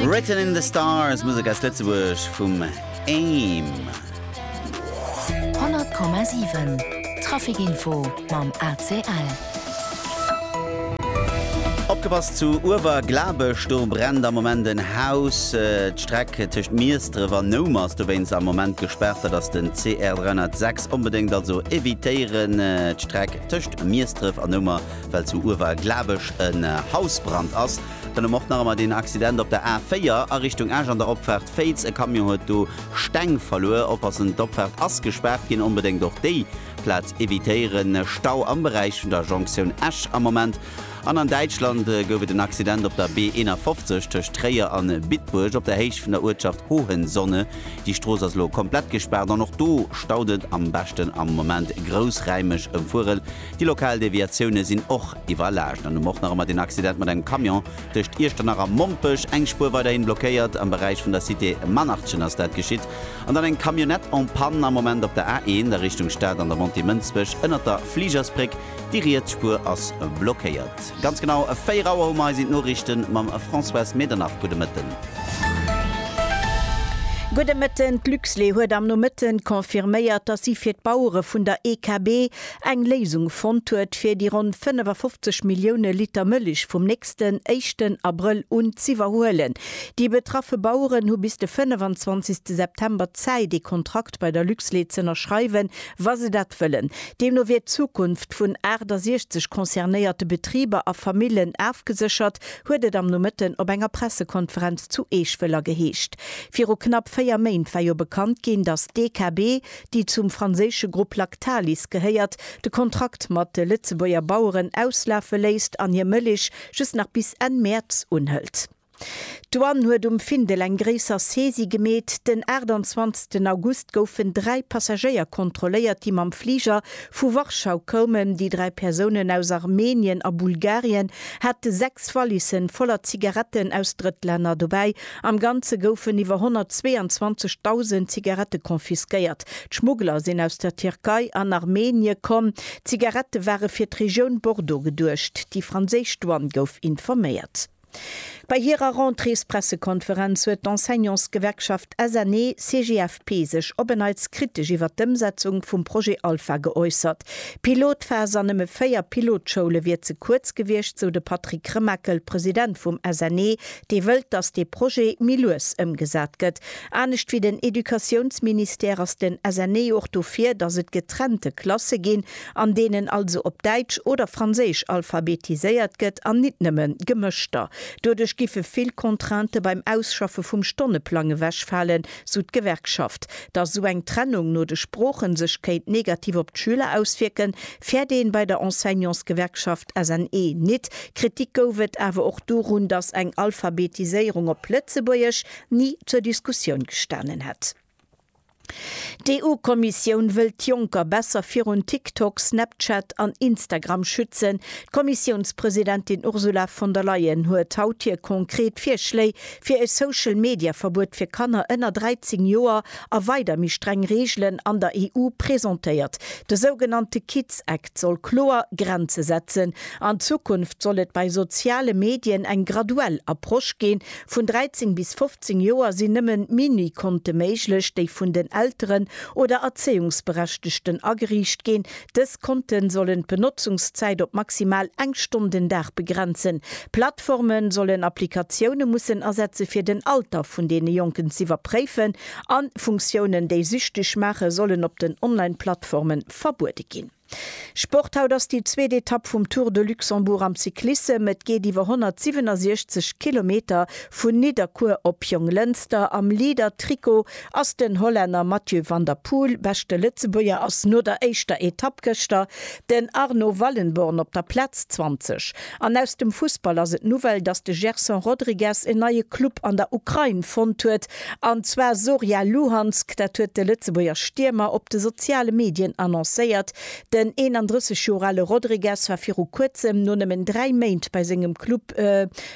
Written in the stars, Musek aus Lëtzebuerg vum Aim. 100,7 Trafikinfo mam ACL. Opgepasst zu Uewerglabech, do brennt am Moment en Haus. Äh, D'Streck tëscht Miesdref an Noum ass dowéinst am Moment gespaart. Dat ass den CR 306. Onbedéngt also evitéieren. Äh, D'Streck tëscht Miesdref an Noumer well zu Uewer glaab ech en Hausbrand ass. Dann um och nach emmer deen Accident op der A4 a Richtung Esch an der Opfaart Féiz. E Camion huet do Steng verluer. Oppassen, d'Opfaart ass gespaart ginn. Onbedéngt och déi Plaz evitéieren. Stau am Beräich vun der Jonktioun Esch am Moment. An an Däitschland gouf et en Accident op der B 51 tëscht Tréier an Bitburg op der Héicht vun der Uertschaft Hohenzonne. Déi Strooss ass elo komplett gespaart an och do staut et. Am beschten am Moment groussräimeg ëmfueren. Déi lokal Deviatioune sinn och iwwerlaascht an um och nach ëmmer deen Accident mat engem Camion tëscht Iechternach a Mompech. Eng Spuer weiderhin blockéiert, am Beräich vun der Cité Manartchen ass dat geschitt. An dann eng Camionnette en panne am Moment op der A1 a Richtung Stad an der Montée Mënsbech ënnert der Fligersbréck. Déi riets Spuer ass blockéiert. Ganz genau 4 Auer hu mer eis. Sinn d'Noriichte mam Françoise Medernach. Gudde Mëtten. Gudde Mëtten. D'Luxlait huet am Nomëtten confirméiert, datt si fir d'Bauere vun der EKB eng Léisung fonnt huet, fir déi ronn 55 Millioune Liter Mëlich vum nächsten éischten Abrëll un z'iwwerhuelen. Déi betraffe Baueren hu bis de 25 September Zäit, ee Kontrakt bei der Luxlait z'ënnerschreiwen, wa se dat wëllen. Deemno wier d'Zukunft vun 68 concernéierte Betriber a Famillen afgeséchert, huet et am Nomëtten op enger Pressekonferenz zu Eech-Wëller geheescht. Viru knapp véier Méint war jo bekannt ginn, datt d'EKB, déi zum franséische Grupp Lactalis gehéiert, de Kontrakt mat de Lëtzebuerger Baueren auslafe léisst an hir Mëlich just nach bis Enn Mäerz unhëlt. D'Douane huet um Findel eng gréisser Saisie gemeet. Den 28 August goufen dräi Passagéier kontrolléiert, déi mam Fliger vu Warschau koumen. Déi dräi Persounen aus Armenien a Bulgarien hate sechs Wallissen voller Zigaretten aus Drëttlänner dobäi Am Ganze goufen iwwer 122.000 Zigarette confisquéiert. D'Schmuggler sinn aus der Tierkei an Armenie komm. D'Zigarette ware fir d'Regioun Bordeaux geduecht. Déi franséisch Douane gouf informéiert. Bei hirer Rentréespressekonferenz huet d'Enseignantsgewerkschaft SNE-CGFP sech op en Neits kritesch iwwer d'Ëmsetzung vum Projet Alpha geäussert. D'Pilotphas an nëmme 4 Pilotschoule wier ze kuerz gewiescht, sou de Patrick Remakel, President vum SNE, dee wëllt, datt dee Projet méi lues ëmgesat gëtt. Anescht wéi den Educatiounsministère ass den SNE och dofir, datt et getrennte Klasse ginn, an deenen also op Däitsch oder Franséisch alphabetiséiert gëtt an nit nëmme gemëschter. Doduerch giffe vill Contraintë beim Ausschaffe vum Stonneplang ewechfalen, sou d'Gewerkschaft. Datt esou eng Trennung no de Sproochen sech kéint negativ op d'Schüler auswierken, fäert ee bei der Enseignantsgewerkschaft. SNE, nit. Kritik gouf et awer och dorun, datt eng Alphabetiséierung op Lëtzebuergesch ni zur Diskussioun gestanen hätt. D'EU-Kommissioun wëllt d'Jonker besser virun TikTok, Snapchat an Instagram schützen. D'Kommissiounspresidentin Ursula von der Leyen huet haut hir konkret Virschléi fir e Social-Media-Verbuet fir Kanner ënner 13 Joer a weider méi streng Reegelen an der EU presentéiert. De sougenannte Kids Act soll kloer Grenze setzen. An Zukunft soll et bei soziale Medien eng graduell Approche ginn. Vun 13 bis 15 Joer sinn nëmme Mini-Konte méiglech, déi vun den Elteren oder Erzéiungsberechtegten ageriicht ginn, Dës Konte sollen d'Benotzungszäit op maximal eng Stonn den Dag begrenzen. D'Plattforme sollen Applikatioune mussen asetze fir den Alter vun deene Jonken z'iwwerpréifen an Funktiounen, déi süchteg maachen, sollen op den Online-Plattforme verbuede ginn. Sport Haut ass déi zweet Etapp vum Tour de Luxembourg am Cyclissem. Et geet iwwer 167 Kilometer vun Nidderkuer op Jonglënster am Leader-Trikot Ass den Hollänner Mathieu van der Poel beschte Lëtzebuerger? Ass no der éischter Etapp gëschter den Arno Wallenborn op der Plaz 20? An aus dem Fussball ass et d'Nouvelle, dass de Gerson Rodrigues en neie Club an der Ukrain fonnt huet, an zwar Zorya Luhansk. Dat huet de Lëtzebuerger Stiermer op de soziale Medien annoncéiert. Den 31 Joer ale Rodrigues war viru kuerzem no nëmmen dräi Méint bei sengem Club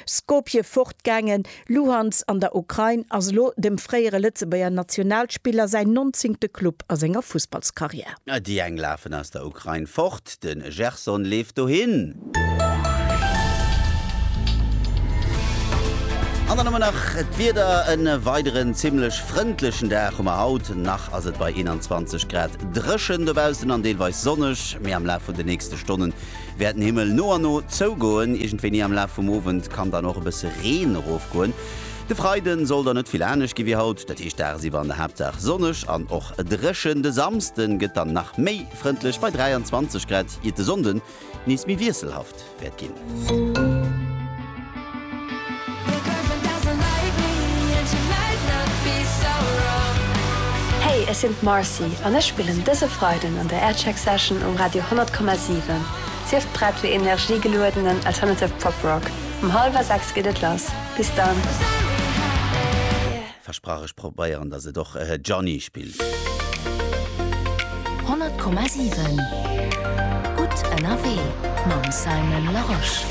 Skopje fortgaangen. Luhansk an der Ukrain ass elo dem fréiere Lëtzebuerger Nationalspiller säin nonzéngte Club a senger Fussballskarriär. Déi eng lafen aus der Ukrain fort, de Gerson leeft dohin. An dann hu mer nach d'Wieder, e weideren zimmlech frëndlechen Dag hu mer haut. Nach ass et bei 21 Grad dréchen dobaussen an deelweis sonneg, mee am Laf vun de nächste Stonnen wäert den Himmel no a no zougoen. Iergendwéini am Laf vum Owend kann dann och e bësse Reen erofgoen. De Freide soll dann net vill anescht gi wéi haut, dat heescht dagsiwwer an der Haaptsaach sonneg an och dréchen. De Samsde gëtt dann nach méi frëndlech bei 23 Grad, iert de Sonnde nees méi wiesselhaft wäert ginn. Hey, ech sinn d'Marcy an ech spillen dëse Freiden an der Aircheck Session um Radio 100,7. Sief prett fir energiegeluedenen Alternative Pop Rock. Um hallwer 6 geet et lass. Bis dann! Versprach ech probéieren dass et och Johnny spillt. 100,7 gutt ënnerwee mam Simon Larosche.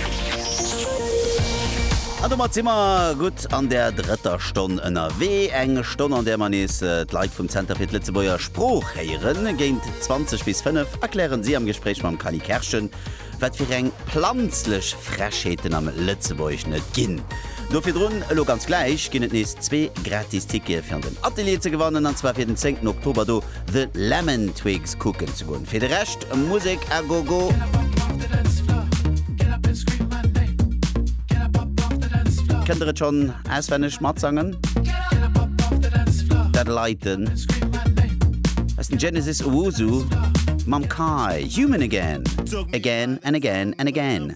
An domat si mer gutt an der drëtter Stonn ënnerwee. Eng Stonn an där mer nees d'Leit vum Zenter fir d'Lëtzebuerger Sprooch héieren. Géint 20 bis 5 erklären si am Gespréich mam Kally Kerschen Wat fir eng planzlech Frechheeten am Lëtzebuerg net ginn! Do virdrun, elo ganz gläich ginn et nees zwee gratis Tickete fir an den Atelier ze gewannen, an zwar fir den 10 Oktober do The Lemon Twigs kucken ze goen. Fir de Rescht Musek à gogo! Kënnt der et schonn Auswenneg matsangen. Dat Leiten aus dem Genesis Owusu mam Kai, Human Again, Again and Again and Again.